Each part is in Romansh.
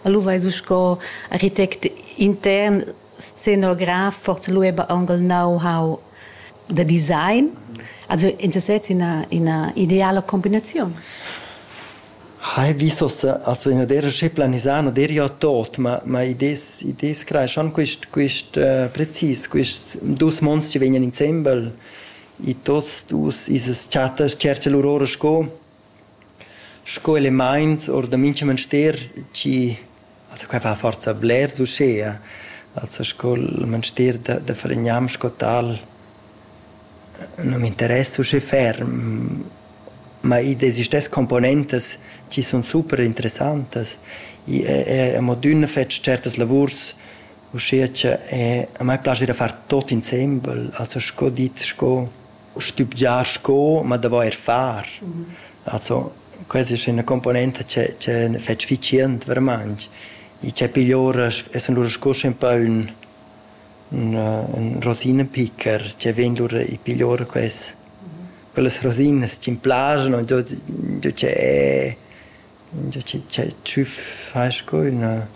Lu veis u sco architect intern scenograf forza lu eba aunc il know-how da design. Also in sesez ina, ina ideala combinaziun. Hai vis ossa, also in der che planisano der ja tot, ma ma idees idees creeschan quist quist uh, precis quist dus monstri vegnan insembel i tos dus ises chatas cerce lur ora sco Sco elemaints our da mincha manster chi also quai fa forsa blers uschea, also sco'l manster da da falignam sco tal nu m'interess uschè ferm, ma id existess componentas chi sun super interessantas. I e e amo d'üna fet tschertas lavurs uschea cha a mai plascha da far tuot insembel, also sco dit sco stübgiar sco, ma d'avair far. Also questa es üna componenta che che fetsch efficient veramaing. I cha piglia ora e sun lura sco ün pa ün ün ün rosinapicker che vegn lura e piglia ora quest. Quellas rosinas chi'm plaschan, dad dad che Giò chi tü fast co üna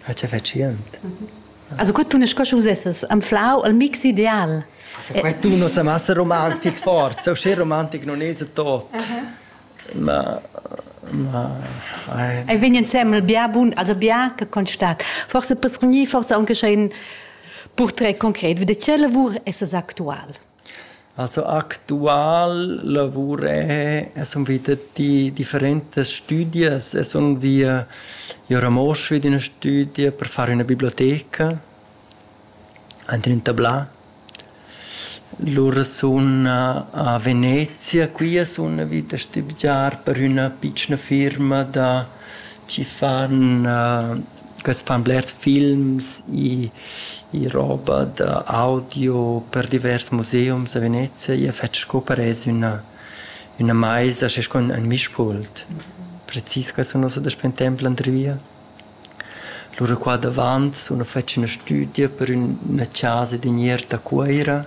fatschiant. Also que tunas sco schi vusessas anflau il mix ideal. Que tuna sa massa romantic forsa, usché romantic non esa tot. Ma ma ai. Ei vegn insembel bia bun, also bia che constat. Forse per gnir forse aunche scha ün purtret concret, vi da che lavur essas actual? Also actual lavur è, e sun vita di differentas stüdias e sun via i a Ramosch vi d'üna stüdia per far üna biblioteca aint ün tablà. Lura sun a Venezia, quia sun vit a stübgiar per üna pitschna firma da chi fan quest fan blers films i i roba da audio per divers museums a Venezia. Ia fetsch sco parez üna üna maisa schi sco ün mischpult. Precis quai sun nus ad temp l'andri via. Lura qua davant sun nus fetsch üna stüdia per üna chasa d'iniert a Cuoira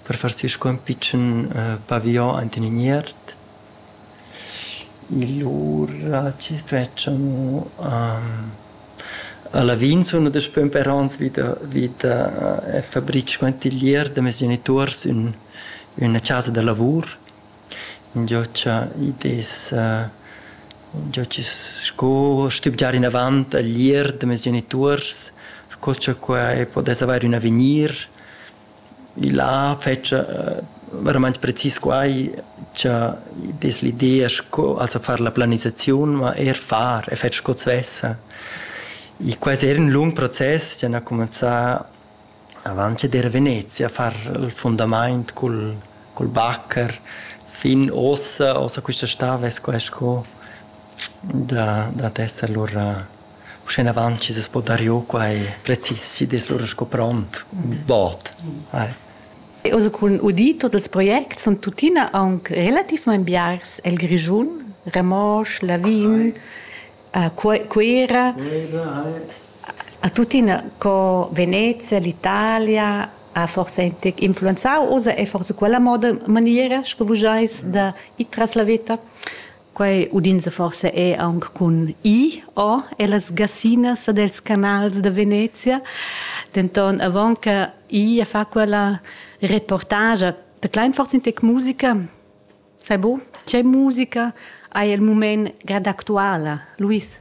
per far sü sco ün pitschen pavion aint in iniert. Lura chi fetschanu a Lavin suna daspö ün pè ans vi da vi da e fabritsch quantiglier da meis genituors ün üna chasa da lavur. Ingio cha id es ingio chi sco stübgiar inavant a l'ir da meis genituors, sco cha quai pudess avair ün avegnir. Là fetscha veramaing precis quai cha dess l'idea sco also far la planisaziun, ma eir far e fer sco svessa. I quai es eir ün lung process chi han cumanzà avant che d'eira Venezia a far il fundamaint cul cul bacher. Fin uossa, uossa quista stà vess quai sco da dad esser lura Uschenavant chi s'es po dar giò quai precis chi'd es lura sco pront, ün bod. Ai. Oz cun udir tuot ils projects sun tuttina aunc relativmaing biars el Grischun, Ramosch, Lavin, a Cu- Cuera, a tuttina co Venezia, l'Italia ha forsa intic influenzau oz e forsa quella moda maniera sco vus eis da ir tras la veta. Quei udinsa forsa è aunc cun I o ellas gassinas ed els canals da Venezia. Denton avon che I fa quella reportagia da Kleinforz in tec musica, sai bu, tgei musica hai il mument grad actuala, Luis?